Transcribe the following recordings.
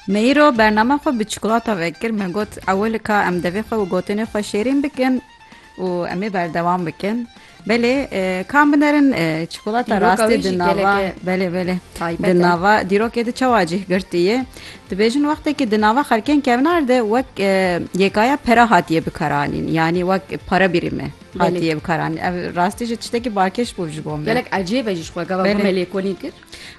Me îro bername xwe bi çikolata vekir. Me got ewil ka em devê xwe û gotinê xwe şêrîn bikin û em ê berdewam bikin. Belê e, ka min erin e, çikolata Dîroka rastê wî di jî nava gelekê belê belê taybet di e. nava dîrokê di çawa cih girtiye. Dibêjin wextekî di nava xelkên kevin erde wek e, yekaya pera hatiye bikaranîn. Yanî wek para birîme Belê. hatiye bikaranîn. Ev rastî jî tiştekî balkêş bû ji bo me. Gelek ecêb e jî ji xwe gava Belê. me lêkolîn kir.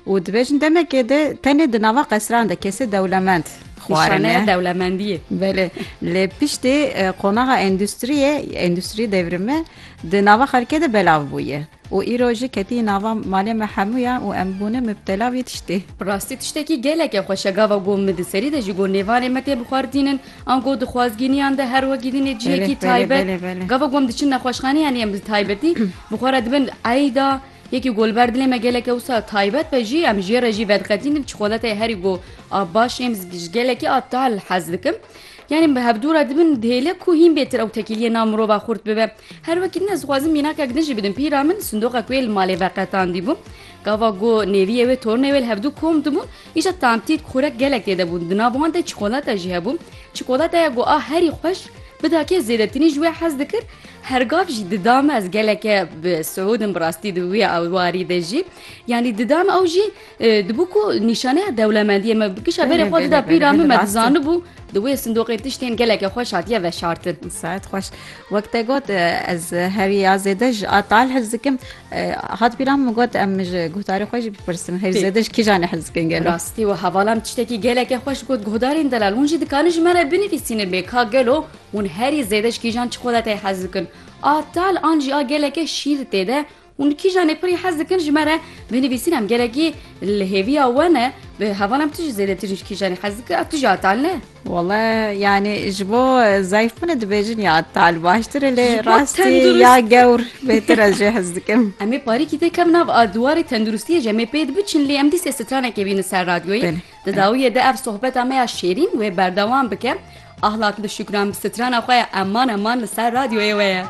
Û dibêjin demekê de tenê di nava qesran de kesê dewlemend xwarine. dewlemendiyê. Belê. Lê piştî qonaxa endustriyê, endustriyê devrimi di nava xelkê de belav bûye. Û îro jî ketiyî nava malê me hemûyan û em bûne mubtela vî tiştê. Bi rastî tiştekî geleke xweş e gava ku min di serî de ji ku nêvanê me tê bixwardînin an ku di xwazgîniyan de her wekî dînê cihekî taybet gava ku em diçin nexweşxaneyanê em bi taybetî bi xwe re dibin eyda Yekî ku li ber dilê me gelekî wisa taybet be jî em jê re jî vediqetînin çikolateyê herî ku a baş êm ji gelekî a tal hez dikim. Yanî bi hevdû re dibin dihêle ku hîn bêtir ew tekîliyê nav mirova xurt bibe. Her wekî din ez dixwazim mînakek din jî bidim pîra min sindoqek wê li malê veqetandî bû. Gava ku nêviyê wê tornê wê li hevdû kom dibûn Îşa tantît xurek gelek tê de bûn, di nav wan de çikolata jî hebû. Çikolataya ku a herî xweş bida kê zêdetinî ji wê hez dikir, her gav jî dida me ez geleke bi siûdim bi rastî di wî warî de jî yanî dida me ew jî dibû ku nîşaneya dewlemendiyê me kişa berê xwe dida pîra min me dizanibû di wê sindoqê tiştên geleke xweş hatiye veşartin. Saet xweş. Wek te got ez hevî ya zêde ji a tal hez dikim. Hat bîra min got em ji guhdarê xwe jî bipirsin hêj zêde ji kîjan e hez dikin gelo. Rastî we hevala min tiştekî gelekê xweş got guhdarên delal hûn jî dikarin ji me re binivîsînin lê ka gelo hûn herî zêde ji kîjan çi xwe de tê hez dikin a tal an jî a geleke şîr tê de hûn kîjanê pirî hez dikin ji me re binivîsîn em gelekî li hêviya we ne bi hevala min tu jî zêdetir ji kîjanê hez dikir a tu jî a tal ne. Wala yanî ji bo zayfûnê dibêjin ya tal baştir e lê rastî ya gewr bêtir ez jê hez dikim. Em ê parîkî tê kevin nav a diwarê tenduristiyê jî em ê pê dibiçin lê em dîsê stranekê bînin ser radyoyê. Di dawiyê de ev sohbeta me ya şêrîn wê berdewam bike. Ahlat li Şukran bi strana xwe ya Eman Eman li ser radyoyê we ye.